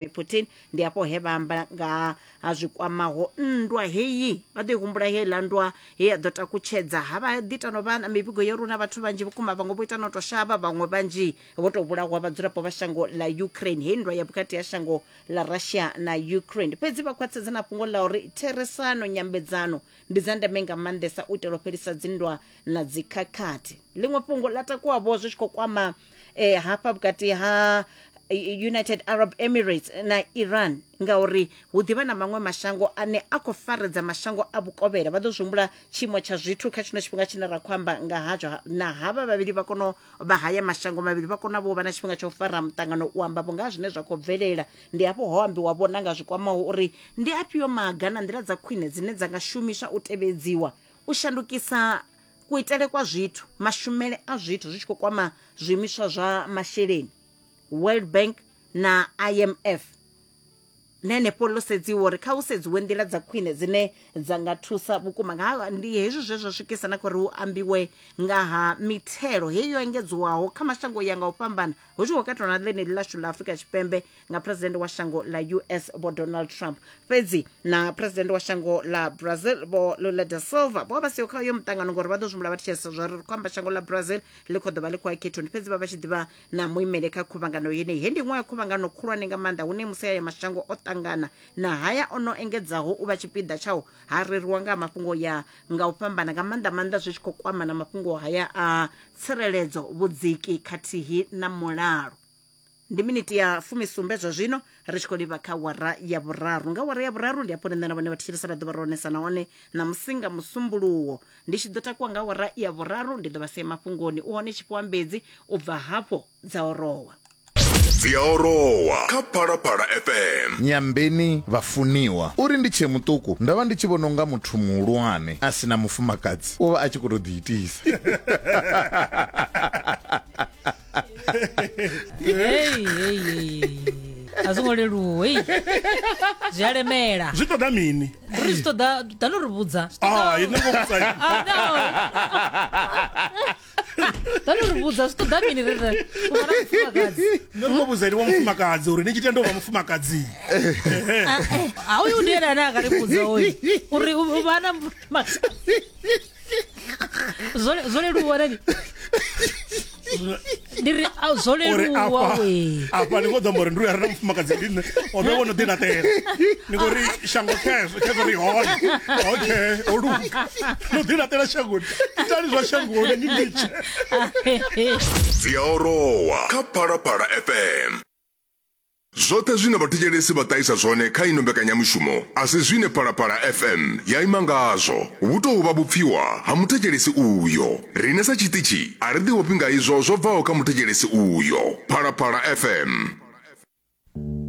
Vladimir Putin ndi afho he vha amba nga ha zwi kwamaho nndwa heyi vha ḓo i humbula heiḽa nndwa he ya ḓo takutshedza ha vha ḓi ita no vha na mivhigo yo runa vhathu vhanzhi vhukuma vhaṅwe vho ita no tou shavha vhaṅwe vhanzhi vho tou vhulahwa vhadzulapo vha shango ḽa Ukraine hei nndwa ya vhukati ha shango ḽa Russia na Ukraine fhedzi vha khwaṱhisedza na fhungo ḽa uri therisano nyambedzano ndi dza ndeme nga maanḓesa u itela u fhelisa dzinndwa na dzikhakhathi ḽiṅwe fhungo ḽa takuwa vho zwi tshi khou kwama eh, hafha vhukati ha eh, united arab emirates na iran ngauri hu ḓivha na maṅwe mashango ane a khou faredza mashango a vhukovhela vha ḓo zwi humbula tshiimo tsha zwithu kha tshino tshifhinga tshine ra khou amba nga hatsho ha- na havha vhavhili vha kono vha haya mashango mavhili vha kona vho vha na tshifhinga tsha u fara muṱangano u amba vho nga ha zwine zwa khou bvelela ndi hafho ho ambiwa vhona nga zwi kwamaho uri ndi afhio maga na nḓila dza khwine dzine dza nga shumiswa u tevhedziwa u shandukisa kuitele kwa zwithu mashumele a zwithu zwi tshi khou kwama zwiimiswa zwa masheleni world bank na imf na henefho ḽo sedziwa uri kha hu sedziwe nḓila dza khwine dzine dza nga thusa vhukuma nga ha- ndi hezwi zwe zwa swikisa na kha uri hu ambiwe nga ha mithelo heyi yo engedziwaho kha mashango ya nga u fhambana hu tshi khou katelwa na ḽeneḽi ḽashu ḽa afrika tshipembe nga president wa shango ḽa us vho donald trump fhedzi na president wa shango ḽa brazil vho lula da silva vho vha vha siho kha uyo muṱangano ngori vha ḓo zwimbula vha thetshelesa zwa ri ri khou amba shango ḽa brazil ḽi khou ḓo vha ḽi khou ya khethoni fhedzi vha vha tshi ḓivha na muimele kha khuvhangano yeneyi he ndi iṅwe ya khuvhangano khulwane nga maanḓa hune musi haya mashango o ṱangana na haya o no engedzaho u vha tshipiḓa tshao ha reriwa nga ha mafhungo ya nga u fhambana nga maanḓa maanḓa zwi tshi khou kwama na mafhungo haya a tsireledzo vhudziki khathihi na mulalo ndi miniti ya fumisumbe zwa zwino ri tshi khou livha kha wara ya vhuraru nga wara ya vhuraru ndi hafho nṋe na vhone vhathetshelesa ra ḓo vha ro onesa nahone ṋamusi nga musumbuluwo ndi tshi ḓo takuwa nga wara ya vhuraru ndi ḓo vha sia mafhungoni u hone tshifhiwa mbedzi u bva hafho dza orowa dzi a orowa kha phalaphala fm nyambeni vhafuniwa uri ndi tshee muṱuku ndo vha ndi tshi vhona unga muthu muhulwane a si na mufumakadzi u vha a tshi khou tou ḓiitisa Hey, hey, hey. a zwo ngo leluwa hei zwi a lemela zwi ṱoḓa mini ri zwi ṱoḓa ḓa no ri vhudza Ah, ini ngo vhudza ini. Ah, no. ḓa no ri vhudza zwi ṱoḓa mini ri ri u vha na mufumakadzi Nṋe ndo vhudza ene wa mufumakadzi uri ni tshi tenda u vha mufumakadzi a uyu ndi ene ane a nga ri vhudza oyu uri u vha na mufumakadzi zwo leluwa nani ndi ri a- zwo uri leluwa afha we afha ni khou ḓo amba uri ndi uya re na mufumakadzi ndi nṋe o vhe wo no ḓi laṱela ni khou ri shango khezwo khezwo ri hone okay o luga no ḓi laṱela shangoni itani zwa shangoni ni litshe dzi a orowa kha phalaphala fm Zwoṱhe zwine vhathetshelesi vha ṱahisa zwone kha ino mbekanyamushumo a si zwine Phalaphala FM ya ima ngazwo. Vhu tou vha vhupfiwa ha muthetshelesi uyo. Riṋe sa tshiṱitshi a ri ḓiofhi nga izwo zwo bvaho kha muthetshelesi uyo. Phalaphala FM.